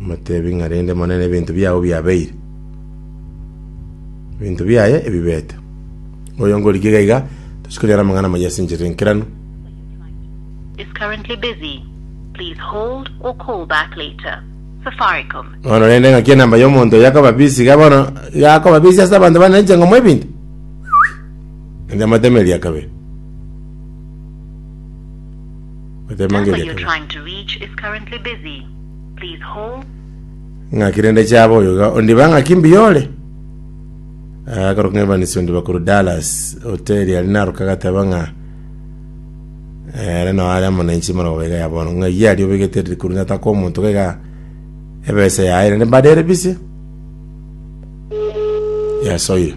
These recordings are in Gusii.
Motebi ng'a rende monene ebinto biao biabeire, ebinto biaye ebibete. Oyo ngorigie iga iga, tochi konyora amang'ana amayia ase enchera enkeranu. is currently busy. Please hold or call back later. Safaricom. Bono rende ng'aki enamba y'omonto oyo akoba busy iga bono iga akoba busy ase abanto bane inche ng'omoa ebinto? Inche motema eria kabere. Motema Number ng'eria you're kabere. trying to reach is currently busy. Ng'aki rende chaba oyo iga ondiba ng'aki mbuya ore? Eh, akorwa ng'a Evans ondiba korwa Dallas, hoteli aria naroka agateba ng'a eh, ere nao are amo nainche morogoba iga ya bono, ng'a iye aria obegete eriri korwa nataka omonto iga iga ebesa yaye rende mbade ere bise yasoire.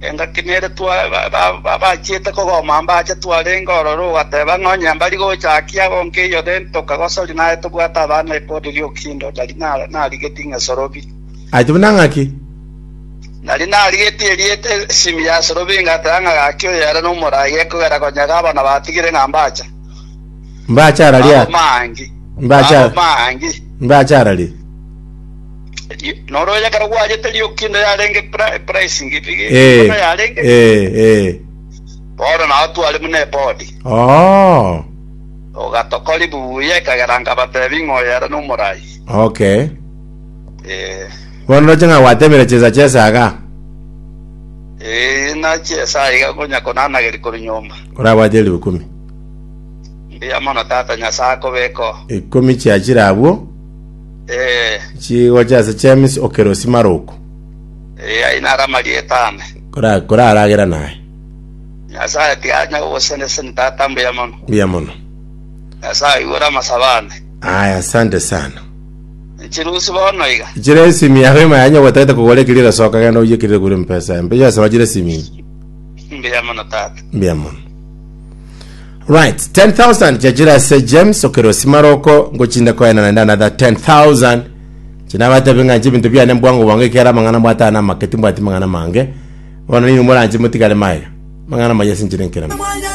Engaki nere bachiete kogoma mbache twarenge ororo ogateba ng'a onye mbari gocha aki aba onkeiyo then tokagosori naye tobwate abana epod ri'okindo ndari narigeti ng'a esorobi. Aye buna ng'aki? Nari narigeti erieta esimi ya esorobi ngateba ng'a gaki oyo ere nomorai gekogera konyega abana batigire ng'a mbacha. Mbacha arari aa. Mbacha arari. Noro oyekare gwachete rioki inde yarenge pricing big Eh, bono yarenge eh, eh. bono nao tware buna ebodi Oh, ogatokori buya ekagera nkabatebi ng'a oyere nomorai okay. eh Bono roche ng'a gwatemire chisa chesaga, eh nachi esaiga konya konanageri kori nyomba korabwate elfu ikumi. mbuya mono tata nyasaye akobeko Ikumi chiachire abwo, Eh, Chigocha ase James Okerosi Maroko. eh, ayio naro amarieta ane. Kora koraragera naye. Nyasae tianya gogoseneseni tata mbuya mono. Mbuya mono. Nyasae aigure amasabo ane. Aya, asante sana. Chirusi bono iga. Chire esimi yago ema yanya gwatagete kogora ekiri egasoka genda oye ekiri egure mpesa empe yasaba chire esimi. Mbuya mono tata. Mbuya mono. Right, 10,000 chiachire ase James okerosi maroko ngochinde koena naende another 10,000 chinabatebi ng'a nche ebinto biane mbwango bwango ekero amang'ana mbwatana namake timbwati mang'ana mange bono ninwe moranche motigare maiga mang'ana maye ase nchire nkeremo